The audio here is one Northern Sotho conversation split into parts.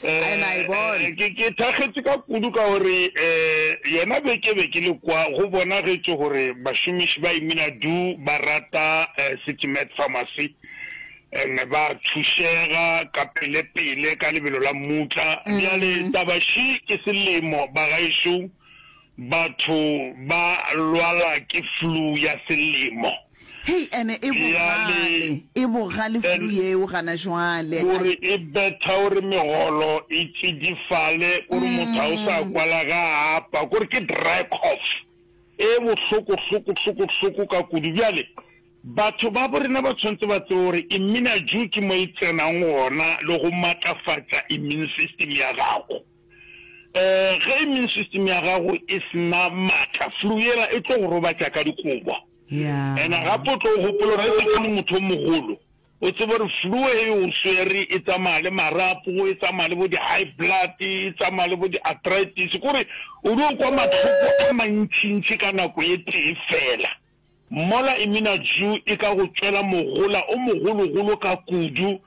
Ke ke thakgetše ka kudu ka gore yona be ke be ke le kwa go bonagetše gore bašomiši ba Imina Du ba rata City Med Pharmacy and ba thušega ka pelepele ka lebelo la mmutla. Bjale taba ši ke selemo bagaešo, batho ba lwala ke flu ya selemo. Hei, ene e bogale, e bogale flu yeo gana jwale. O re e betha gore megolo e tšidifale, o re motho ga o sa kwala ge a apa, ko re ke dry cough e bohloko-hloko-hloko-hloko ka kudu. Bjale batho ba bo rena ba tshwanetse ba tsebe gore Immunajoe ke mo e tsenang gona le go matlafatša immune system ya gago. Ge immune system ya gago e se na matla, flu yela e tlo go robatša ka dikobo. Ena gape o tlo gopola ge se kgole motho o mogolo. O tseba gore flu he o swere e tsamaya le marapo, e tsamaya le bo di high blood, e tsamaya le bo di arthritis. Kore o di o kwa matlhoko a mantši ntši ka nako e tee fela. Mola Iminaju e ka go tšwela mogola o mogolo golo ka kudu.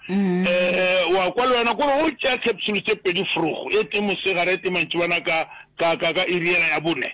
Wa kwa le wena kore o tšea capsule tše pedi forogo, e tee mosegare e tee mantšibana ka ka ka ka iriela ya bone.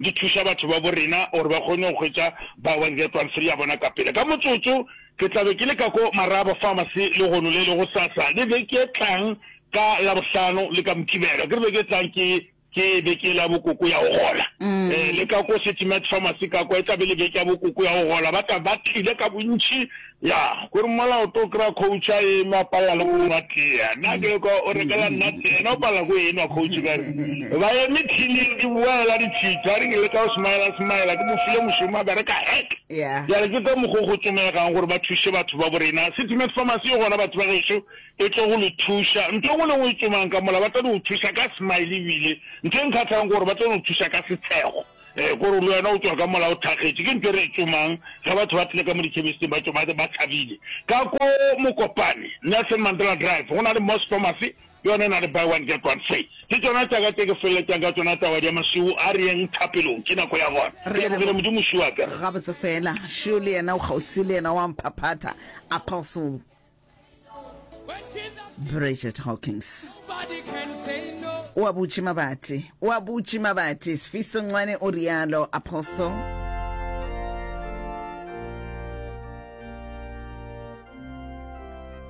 Di thuša batho babo rena gore ba kgone go hwetša bao ba ngatwang sele ya bona ka pele. Ka motsotso ke tla be ke le ka ko Maraba Pharmacy lehono le lego sasa le beke e tlang ka Labohlano le ka Mokibelo. Akere beke e tlang ke ke beke la bo koko ya go gola. Le ka ko City Med Pharmacy ka kwa e tla be le beke ya bo koko ya go gola. Ba tla ba tlile ka bontši Ya, ko re mola o to kry-a coach a eme a palela le go nwa tea. Nna ke lekwa o rekela nna tea, yena o palela ko enwa coach ka re ba eme thining di boela di tšhitha. A re ke leka go smile-a smile-a ke mo file mošomo a bereka heck. Bjale ke ka mokgo go tsomegang gore ba thuše batho ba bo rena. City Med Pharmacy yo gona batho ba gešo e tlo go le thuša. Ntho e nngwe le e nngwe e tsomang ka mola ba tlo no thuša ka smile ebile ntho e nkgatlhang ke gore ba tlo no thuša ka setshego. Ee, ko re le wena o tšwa ka mola o thakgetše. Ke ntho e re e tsomang ge batho ba tlile ka mo ditšhemisteng ba tšwa ba tlhabile. Ka ko Mokopane, Nelson Mandela Drive, go na le Moss Pharmacy, ke yona e na le buy one get one free. Ke tšona tša ka tše ke feleletšang ka tšona taba ya mašwiu. A re yeng thapelong, ke nako ya gona. Ke lebogile Modimo mši wa ka. Gabotse fela, šio le yena o kgauswi le yena wa mphaphatha, Apostle. bridget hawkins o a butše mabati o a butše mabati sefiso ncwane o rialo apostle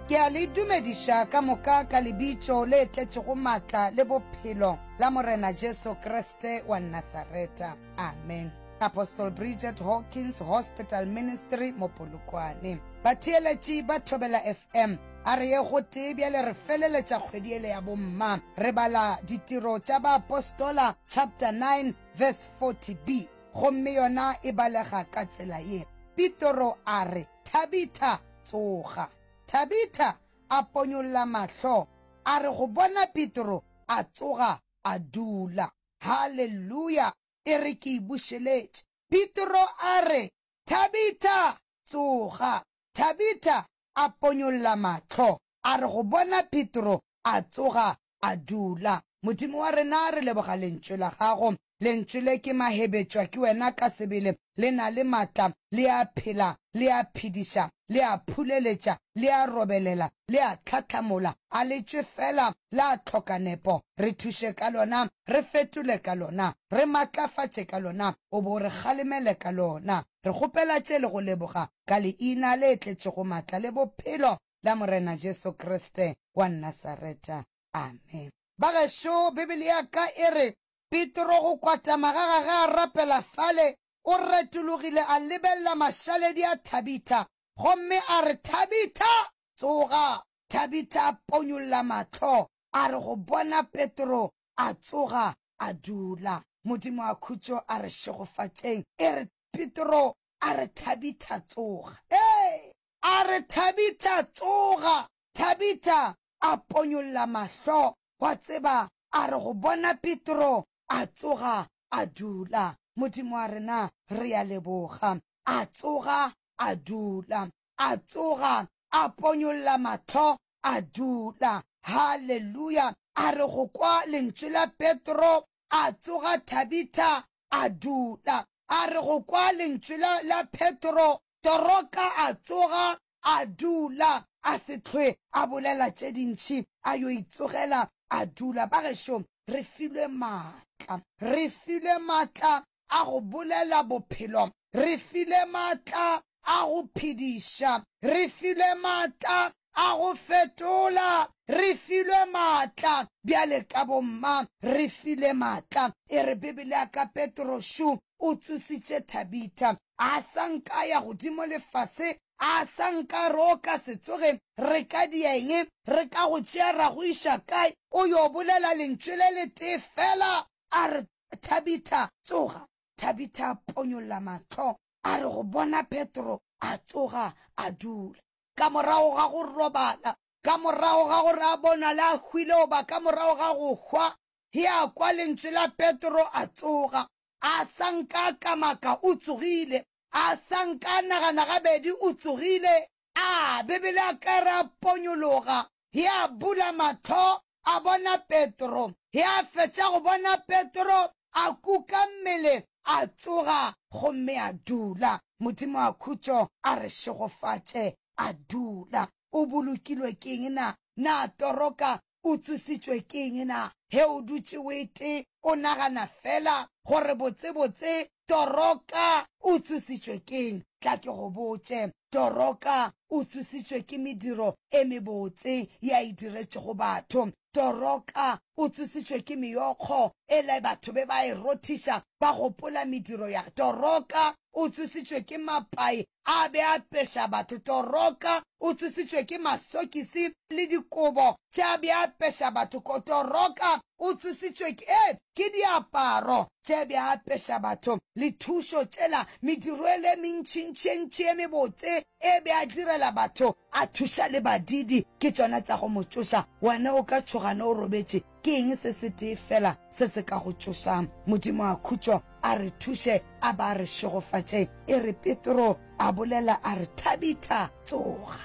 ke a le dumediša ka moka ka lebitšo le tletšego maatla le bophelo la morena jesu kriste wa nasareta amen Apostle Bridget Hawkins Hospital Ministry mo Polokwane. Batheeletši ba Thobela FM a re ye gotee bjale re feleletša kgwedi ele ya bomma. Re bala Ditiro tša Baapostola chapter 9 verse 40b gomme yona e balega ka tsela ye, Pitoro a re, Thabitha, tsoga! Thabitha a ponyolla mahlo, a re go bona Pitoro, a tsoga a dula. Haleluya! e re ke e bušeletše. Petro a re, Thabitha, tsoga! Thabitha a ponyolla mahlo, a re go bona Petro, a tsoga, a dula. Modimo wa rena, re leboga Lentšu la Gago. Lentšu le ke mahebetšwa ke Wena ka sebele. Le na le matla, le a phela, le a phediša, le a phuleletša, le a robelela, le a tlhahlamola. A le tšwe feela, la hloka nepo. Re thuše ka lona, re fetole ka lona, re matlafatše ka lona, o bo o re kgalemele ka lona. Re kgopela tše le go leboga ka Leina le tletšego matla le bophelo la Morena Jesu Kriste wa Nasareta. Amen. Bagešo, Bibele ya ka e re, Petro go kwatama ga gage a rapela fale, o retologile a lebelela mašaledi a Thabitha gomme a re, Thabitha, tsoga! Thabitha a ponyolla mahlo, a re go bona Petro, a tsoga, a dula. Modimo a khutšo a re šegofatšeng, e re, Petro, a re Thabitha, tsoga! Ee! A re, Thabitha, tsoga! Thabitha a ponyolla mahlo, wa tseba, a re go bona Petro, a tsoga a dula. Modimo wa rena, re a leboga. A tsoga a dula. A tsoga a ponyolla mahlo, a dula. Haleluya! A re go kwa lentšu la Petro, a tsoga Thabitha, a dula. A re go kwa lentšu la, la Petro, Toroka a tsoga, A dula, a se hlwe a bolela tše dintši, a yo itsogela a dula. Bagešo, re filwe maatla. Re filwe maatla a go bolela bophelo. Re filwe maatla a go phediša. Re filwe maatla a go fetola. Re filwe maatla. Bjale ka bomma, re filwe maatla. E re Bibele ya ka Petrošu, O tsositše Thabitha. A sa nka ya godimo le fase, a sa nka roka se tsoge, re ka dia eng? Re ka go tšea ra go iša kae? O yo bolela lentšu le letee fela, a re, Thabitha, tsoga. Thabitha a ponyolla mahlo, a re go bona Petro, a tsoga, a dula. Ka morago ga go robala, ka morago ga gore a bonale a hwile goba ka morago ga go hwa, Ge a kwa lentšu la Petro, a tsoga. A sa nka a kamaka, o tsogile. A sa nka a nagana gabedi, o tsogile. A Bibele a ka re a ponyologa. Ge a bula mahlo, a bona Petro. Ge a fetša go bona Petro, a kuka mmele, a tsoga, gomme a dula. Modimo a khutšo a re šegofatše. A dula. O bolokilwe ke eng na? Na toroka o tsošitšwe ke eng na? Ge o dutše o ete o nagana fela gore botsebotse Toroka o tsošitšwe ke eng, tla ke go botše. Toroka o tsošitšwe ke mediro e mebotse ye a e diretšego batho. Toroka o tsošitšwe ke meokgo ela batho be ba e rothiša ba gopola mediro ya. Toroka o tsošitšwe ke mapai a be a peša batho. Toroka o tsošitšwe ke masokisi le dikobo tše a be a peša batho ko. Toroka o tsošitšwe ke, ee, ke diaparo tše a be a peša batho, le thušo tšela, mediro ele e mentšintši e ntši e mebotse e be a direla batho, a thuša le badiidi, ke tšona tša go mo tšoša. Wena o ka tšhoga ne o robetše, Ke eng se setee fela se se ka go tšošang? Modimo a khutšo a re thuše, a ba a re šegofatše. E re Petro a bolela a re, Thabitha, tsoga!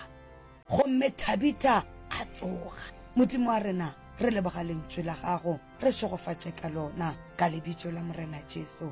Gomme Thabitha a tsoga. Modimo wa rena, re leboga Lentšu la Gago. Re šegofatše ka Lona, ka Lebitso la Morena Jesu.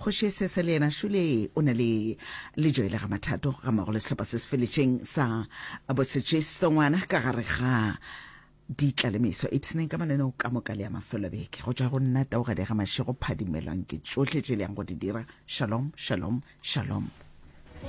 Kgoši Sese le yena šule o na le lejo e le ga mathato ga mmogo le sehlopha se se feletšeng sa bosetšisto ngwana ka gare ga ditlalemeso ipsneng ka mananeo ka moka le ya mafelobeke go tšwa go nna taogadi ga mašego phadimelwang ke tšohle tše le yang go di dira shalom shalom shalom